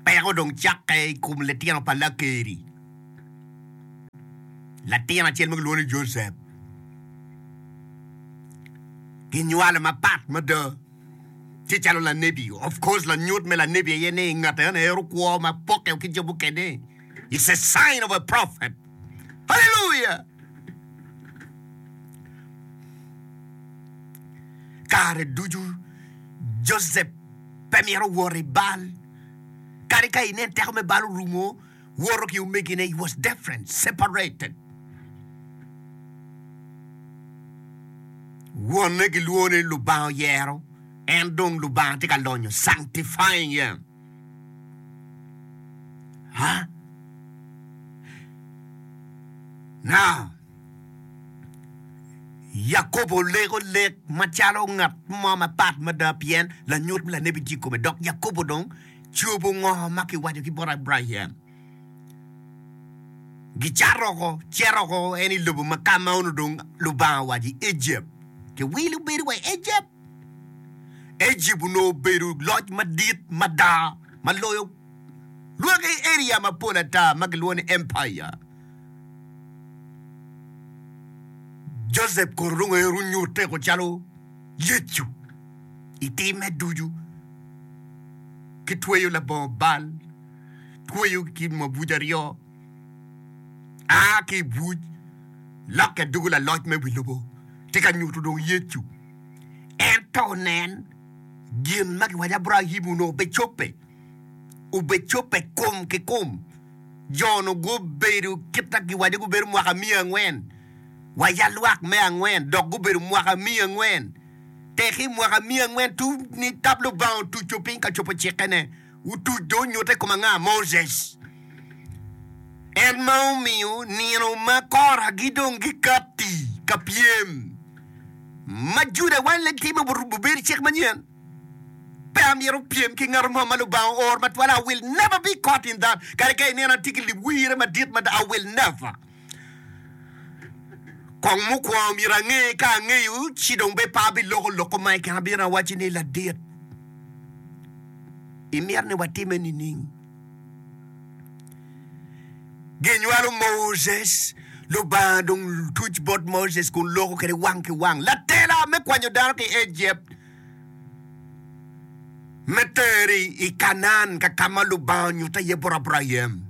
peko dong cakke i kom litino pa Lakeri. Latin acel ma kilwongo ni Josep kinywale mapat mada tye calo lanebi. Of course lanyut me lanebi aye ni ngat enoni hero kwo ma pokke ki jo mukene. It's a sign of a prophet. Hallelujah! Kare ducu Joseph pe mito wot i bal. Kadi ka inen teko me bal orumo, woto ki omegine, he was different, separated. Wonne gilwone Lubanga oyero, en dong Lubanga tye ka lonyo, sanctifying him. Huh? Now, Yakobo olego lek macalo ngat mo mapat mada pien lanyut me lanebi tye i kome dok Yakobo dong cobo ngo ma kiwaco ki bot Abraim. Gicato oko, cito oko en i lobo ma ka ma onongo dong Lubanga owaco i Egypt. Kiwilo bedo wa i Egypt. Egypt onongo obedo loc madit mada ma loyo lwaki area mapol ata ma kilwongo ni empire. Joseph kono dong ero onyutte ko calo Yecu i timme ducu ki tweyo labongo bal, tweyo ki mabuc aryo. a ki i buc lokke doko laloc me wi lobo tye ka nyuto dong Yecu. Ento nen, gin ma giwaco Abraim onongo obicobbe. Obicobbe kum ki kum. Jo-nu gubedo kit ma giwaco gubedo mwaka miya angwen wa ya lwak me angwen dok gubedo mwaka miya angwen. Teki mwaka miya angwen tum ni tab Lubanga otuco piny ka cobo cikkene. Otuc dong onyutte i kom anga? Moses, en ma omiyo nino ma kora gidong gikatti ka pyem ma Juda weng leng timo obedo cik manyen. Pe amyero opyem ki ngat mo ma Lubanga ooro matwal. I will never be caught in that. Kadi ka inena atye ki lib wirre madit mada, I will never. Kong mukwongo myero ange ka angeyo ci dong be pe abiloko lok ma i kine abino awacci ni ladit imito ni watime nining? Ginywalo Moses, Lubanga dong tuc bot Moses kun loko kwede wang ki wang. Latela me kwanyo dano ki i Ejipt me teri i Kanaan ka ka ma Lubanga onyutte iye bot Abraim.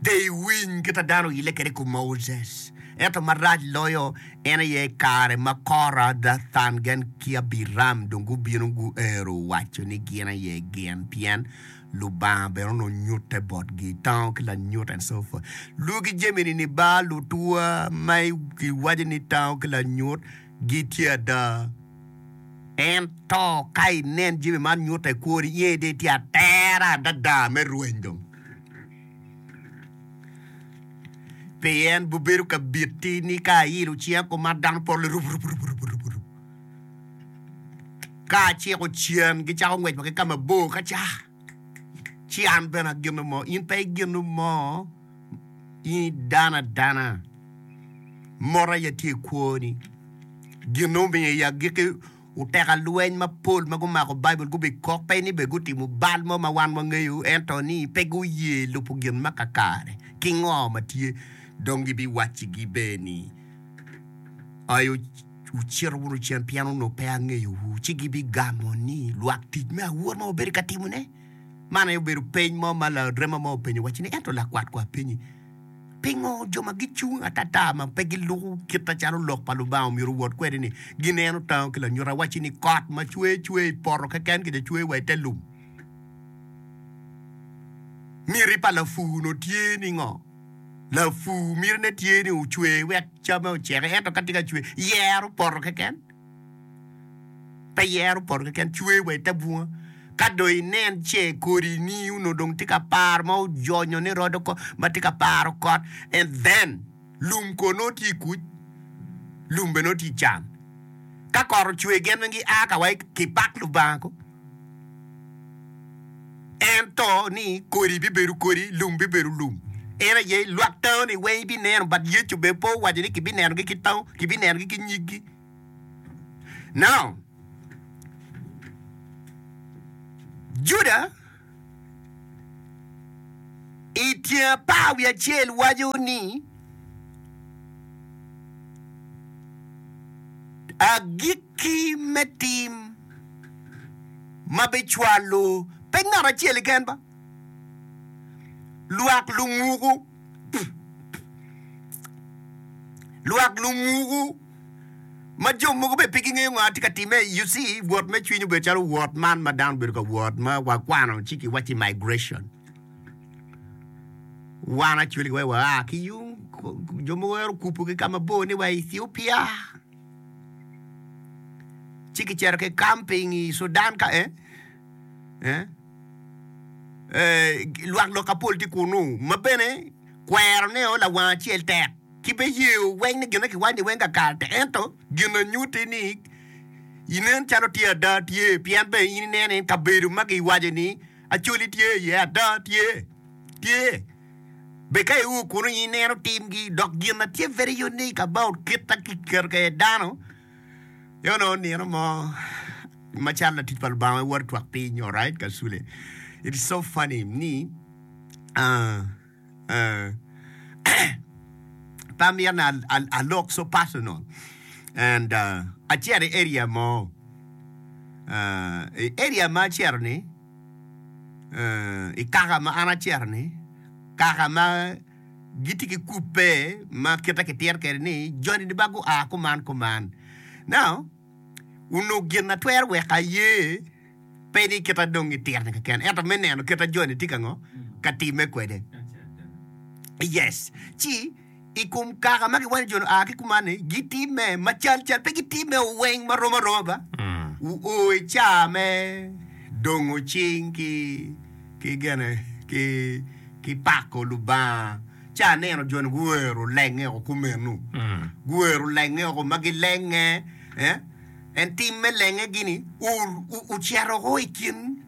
Pe iwiny kit a dano oyille kwede i kom Moses, ento marac loyo en aye i kare ma Kora, Dathan, Gen ki Abiram dong gubino guero waco ni gin aye gin, pien Lubanga bene onongo nyutte botgi i tango ki lanyut, and so forth. Luw ki jamini ni, Ba lutwa ma kiwaco ni tango ki lanyut, gitye ada. Ento ka inen jami man nyutte kwori iye dong itye atera adada me rweny dong, pien gubedo ka biti ni ka ailo cinga kum ma dano polle rup rup rup rup rup rup. Ka aciko cen gicako ngwec wa ki ka mabor ka ca. Ci an bene agino mo, in pe igino mo, in idano adana. Mot aye tye i kwoni. Gin omiyo i agikki uteka lweny mapol ma gumako Baibul gubikok, pe ni bene gutimo bal mo ma wan wangeyo, ento ni pe guye lubo gin ma kakare ki ngo ma tye. Dong gibiwaccigi bene ni, Ai, Wucito wunu cen pien onongo pe angeyowu, ci gibigamo ni, 'Lwak tic me awor ma wabedo ka timone? Man aye obedo peny mo ma larema mo openyo wacci-ni, Ento lakwat, kono apenyi, pingo jo ma gicung atata ma pe giluko kitta calo Lok pa Lubanga omyero owot kwede-ni? Gineno tango ki lanyut, awacci-ni, kot ma cwer cwer i poto keken kede cwer wa i te lum. Miti pa lapur-nu tye ni ngo? Lapur mitine tye ni ocwe wek camme oceke, ento ka tye ka cwe, yero poto keken. Pe yero poto keken, cwe wa i te bunga. Ka dong inen ce kodini onongo dong tye ka par ma ojonyo ni rodo ko, ma tye ka paro kot, and then lum kono nongo tye i kuc, lum bene nongo tye i can. Ka kot ocwe gin weng gia ka wa ki pak Lubanga ko. Ento ni kodi bibedo kodi, lum bibedo lum. En aye lwak tango-ni weng ibineno, but Yecu bene pe owaco ni kibinenogi ki tango, kibinenogi ki nyiggi. Now, Juda i tyeng apar wiye acel waco ni agikki me tim ma bicwalo pe ngat acel-li ken ba, lwak lunguku, lwak lunguku ma jo mogo bene pe gingeyo ngo atye ka timme. You see, wot me cwiny obedo calo wot man ma dano bedo ka wot ma wakwano ci kiwacci migration. Wan actually wa aa ki yung, jo mogo wero okupogi ka mabor ni wa i Ethiopia. ci kicito ki kamping i Sudan ka e lwak lok apol tye kunu ma bene kwero ne o lawang acel tek ki be yeyo weng ni gine kiwac ni weng kakal te ento gin anyuti ni inen calo tye ada tye pien be in inene kabedo ma giwaco ni acoli tye iye ada tye tye Bed ka iur kun onyo ineno timgi dok gin na tye very unique about kit ma ki keto kwede dano i ono nino mo ma calo latic pa Lubanga ma iwoto twak piny nyo right kasule it's so funny ni ah ah pe amyero ni a lok so personal and ah acito i area mo ah i area ma acito ni i kaka ma an acito ni kaka ma gitye ki kupe ma kite ki tito kwede ni joni dong gua kuman kuman now onongo gin na twero weko aye pe ni kit ma dong gitito ni keken ento me neno kit ma joni tye ka ngo ka time kwede yes ci i kom kaka ma giwanyo jo lua ki kumanni, gitimme macal cal, pe gitimme oweng ma rom aroma ba. Wuo i caa me dongo cing ki ki gene ki ki pako Lubanga. Ca aneno jo-ni guwero lenge oko kumeno, guwero lenge oko ma gilenge, eh, en tim me lenge gini o- o- ocito oko i kin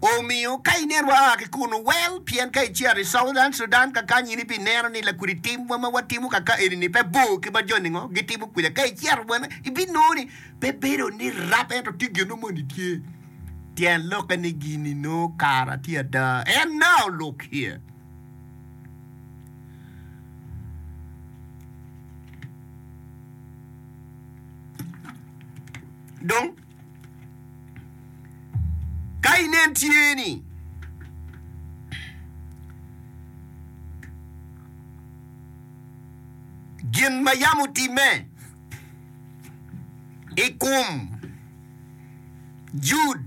Omiyo, ka ineno waa ki kunu, wel, pien ka icito i Southern Sudan kakanyi in ibineno ni lakwede timwa ma watimo kaka eni-ni pe bor ki ma jo ningo gitimo kwede. Ka icito bene, ibinongo ni pe bedo ni rap ento tye gin mo ma nongo tye. Tyen lokke ni gin-ni nongo kara tye ada. And now, look here. Dong. Ka inen tye ni gin ma yam otimme i kom Jud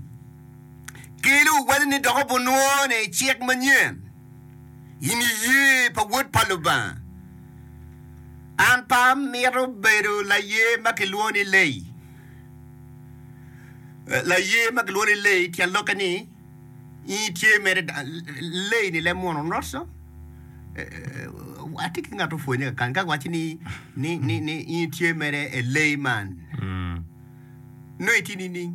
kelo wele ni dok obunwone i cik manyen, in iye pa Wod pa Lubanga. An pe amito bedo laye ma kilwongo ni Leyi. Laye ma gilwongo ni Leyi, tyen lokke ni nyi tye mere Leyi ni lem munu not so. Atye ki ngat opwonye kakany ka waco ni ni ni ni nyi tye mere e Leyi man. No itye nining?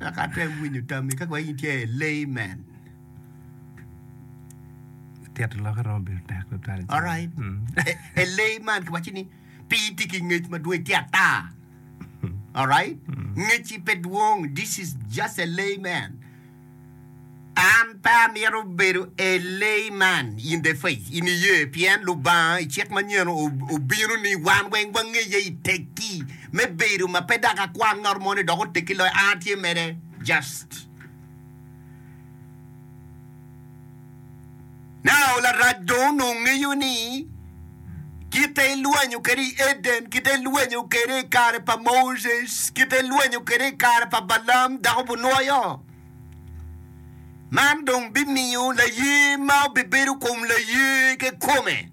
Ka ate winyo tammi ka waco nyi tye e Leyi man. Tito lokke romo bedo tek tutwal. i ceng. Alright. E- Elei man kiwaci ni pi tye ki ngec madwong itye ata. Alright? Ngeci pe dwong. This is just a layman. An pe amito bedo a layman in the faith, in iye pien Lubanga i cik manyen o- obino ni wan weng wangeye i tekki me bedo ma pe dok akwang ngat mo ni dok otekki loyo an atye mede. Just. Nao larac dong onongo ngeyo ni kite ilwenyo kwede i Eden, kite ilwenyo kwede i kare pa Moses, kite ilwenyo kwede i kare pa Balam dako bunwoyo. Man dong bimiyo laye ma obibedo kom laye kekome.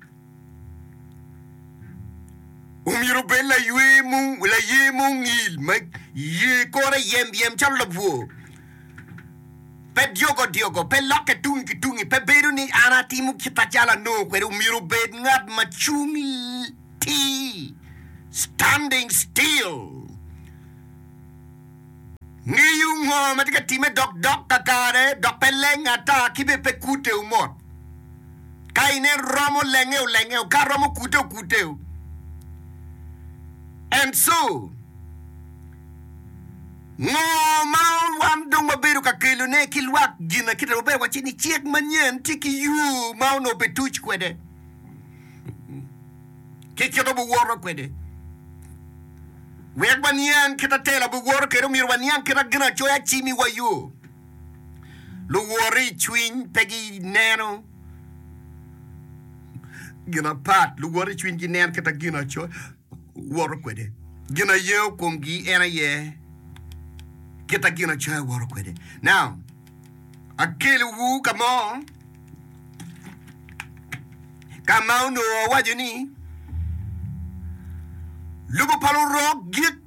Omyero obed laywe mung, laye mungil ma ye kore yem yem calo labwor. Pe dyogo dyogo, pe lokke tungi ki tungi, pe bedo ni an atimo kit acalo anongo kwede. Omyero obed ngat ma cung l- tir, standing still. Ngeyo ngo ma tye ka timme dok dok kakare dok pe leng ata ki bene pe kute u mot. Ka inen romo lenge u lenge u ka romo kute u kute u. And so ngo ma wan dong wabedo ka kelo ne ki lwak gina kita wabedo waci ni cik manyen tye ki yo ma onongo pe tuc kwede. ki kit ma wuwoto kwede. Wek waniang kit ma tela biwoto kwede, omyero waniang kit ma Ginacoya cimiwa yo. Luwoti i cwiny pe gineno gin apat, luwoti i cwiny gineno kit ma Ginacoya woto kwede. Gin ma yengo komgi en aye kit ma Ginacoya woto kwede. Now, akeliwu ka mo. ka ma onongo awaco ni lobo pa lurok gik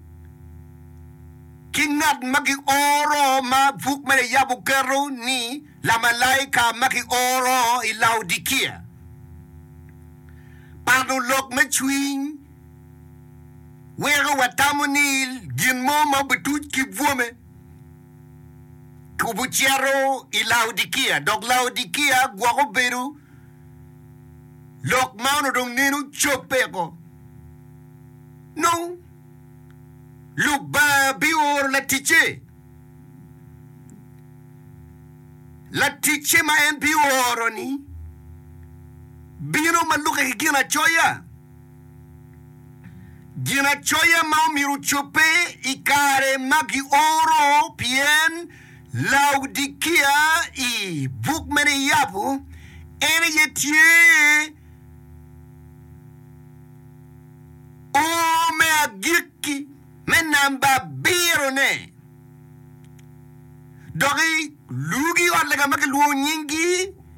ki ngat ma gioro ma buk me yab oketo ni lamalaika ma gioro i Laodikia, pato lok me cwiny weko watamo ni gin mo ma obi tuc ki bwome. tubo cito i Laodikia, dok Laodikia gwoko bedo lok ma onongo dong neno cobbe oko. Nong Lubanga bioro laticce, laticce ma en bioro-ni bino ma lukke ki ginacoya. Ginacoya ma omyero ocobbe i kare ma gioro pien Laodikia i buk me niyabo en aye tye O me agikki me namba abirone. Dok i lugi ot lega ma kilwongo nyinggi